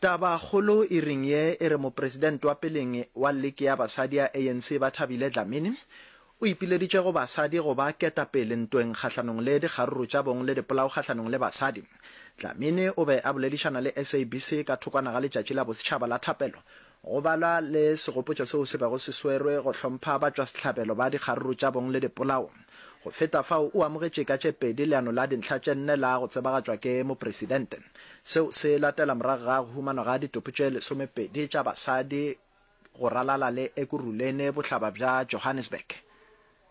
Tabakgolo e reng ye e re mopresidente wa peleng wa leke ya basadi ya ANC Bathabile Dlamini o ipileditše go basadi go ba ketapele ntweng kgahlanong le dikgaruru tša bong le dipolao kgahlanong le basadi. Dlamini o be a boledišana le SABC ka thokwana ga letšatši la bosetšhaba la thapelo Go balwa le segopotšo seo se bego se swerwe go hlompha batšwasehlabelo ba dikgaruru tša bong le dipolao. Go feta fao, o amogetše ka tše pedi leano la dintlha tše nne la go tsebagatšwa ke Mopresidente. Seo se latela morago ga go humanwa ga ditopo tše lesomepedi tša basadi go ralala le Ekurhuleni, bohlaba bja Johannesburg.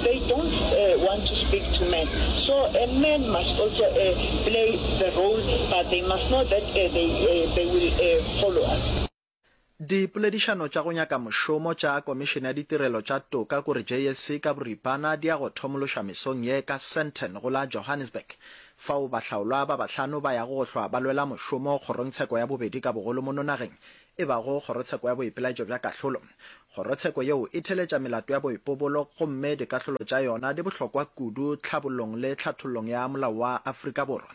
They don't uh, want to speak to men. So a man must also uh, play the role, but they must know that uh, they, uh, they will uh, follow us. Dipoledišano tša go nyaka mošomo tša Komišene ya Ditirelo tša Toka kore JSC ka boripana di ya go thomološwa mesong ye ka Sandton go la Johannesburg, fao bahlaolwa ba bahlano ba yago go hlwa ba lwela mošomo kgorongtsheko ya bobedi ka bogolo mono nageng e bago Kgorotsheko ya Boipelaetšo bja Kahlolo. Kgorotsheko yeo e theeletša melato ya boipobolo gomme dikahlolo tša yona di bohlokwa kudu tlhabollong le tlhathollong ya molao wa Afrika Borwa.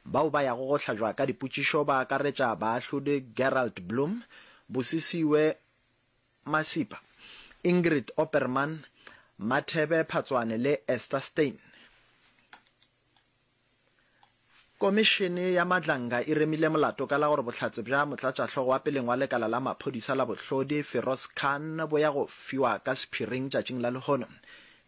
Bao ba yago go hlajwa ka dipotšišo ba akaretša Baahlodi Gerald Bloom, Busisiwe Masipa, Ingrid Opperman, Mathebe Phatswane le Esther Steyn. Komišene ya Madlanga e remile molato ka la gore bohlatse bja motlatšahlogo wa peleng wa lekala la maphodisa la bohlodi, Feroz Khan, bo ya go fiwa ka sephiring tšatšing la lehono.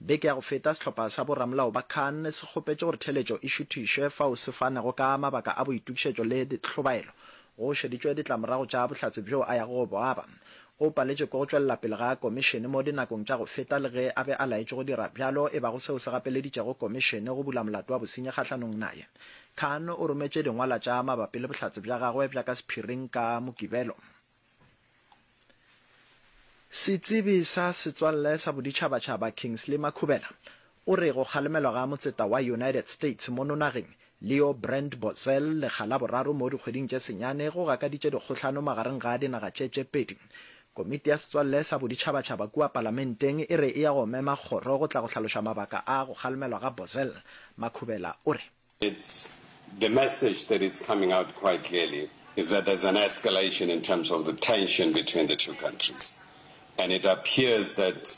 Beke ya go feta, sehlopha sa boramolao ba Khan se kgopetše gore theeletšo e šuthišwe fao se fanego ka mabaka a boitokišetšo le hlobaelo. Go šeditšwe ditlamorago tša bohlatse bjoo a yago go bo aba. O paletšwe ke go tšwelela pele ga Komišene mo dinakong tša go feta le ge a be a laetšwe go dira bjalo e bago seo se gapeleditšego Komišene go bula molato wa bosenyi kgahlanong naye. Khan o rometše dingwalwa tša mabapi le bohlatse bja gagwe bja ka sephiring ka Mokibelo. Setsebi sa setswalle sa boditšhabatšhaba Kingsley Makhubela O re go kgalemelwa ga motseta wa United States mono nageng, Leo Brandt Bozell, lekga la boraro mo dikgweding tše senyane, go gakaditše dikgohlano magareng ga dinaga tše tše pedi. Komiti ya Setswalle sa Boditšhabatšhaba kua Palamenteng e re e ya go mema kgoro go tla go hlaloša mabaka a go kgalemelwa ga Bozell. Makhubela o re. It's the message that is coming out quite clearly is that there's an escalation in terms of the tension between the two countries and it appears that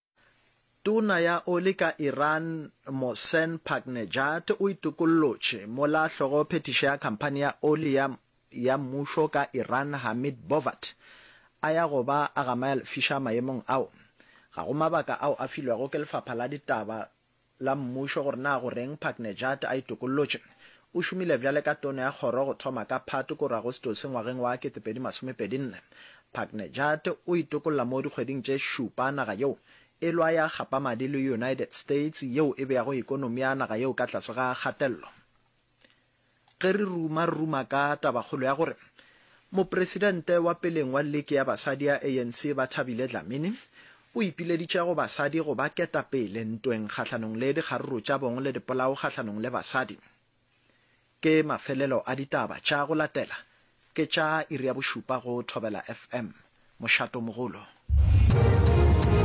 Tona ya oli ka Iran Mohsen Paknejad o itokollotše, mola hlogo phethiši ya khamphani ya oli ya ya mmušo ka Iran Hamid Bovat a ya go ba a gamaya lefiša maemong ao. Ga go mabaka ao a filwego ke lefapha la ditaba la Mmušo gore na go reng Paknejad a itokollotše. O šomile bjale ka tono ya kgoro go thoma ka Phatwe koro Agostose ngwageng wa 2024. Paknejad o itokolla mo dikgweding tše šupa naga yeo e lwa ya gapa madi le United States yeo e beago ekonomi ya naga yeo ka tlase ga kgatello. Ge re ruma, re ruma ka tabakgolo ya gore Mopresidente wa peleng wa Liki ya Basadi ya ANC, Bathabile Dlamini, o ipileditše go basadi go ba ketapele ntweng kgahlanong le dikgaruru tša bong le dipolao kgahlanong le basadi. Ke mafelelo a ditaba tša go latela, ke tša iri ya bošupa go Thobela FM. Mošato mogolo.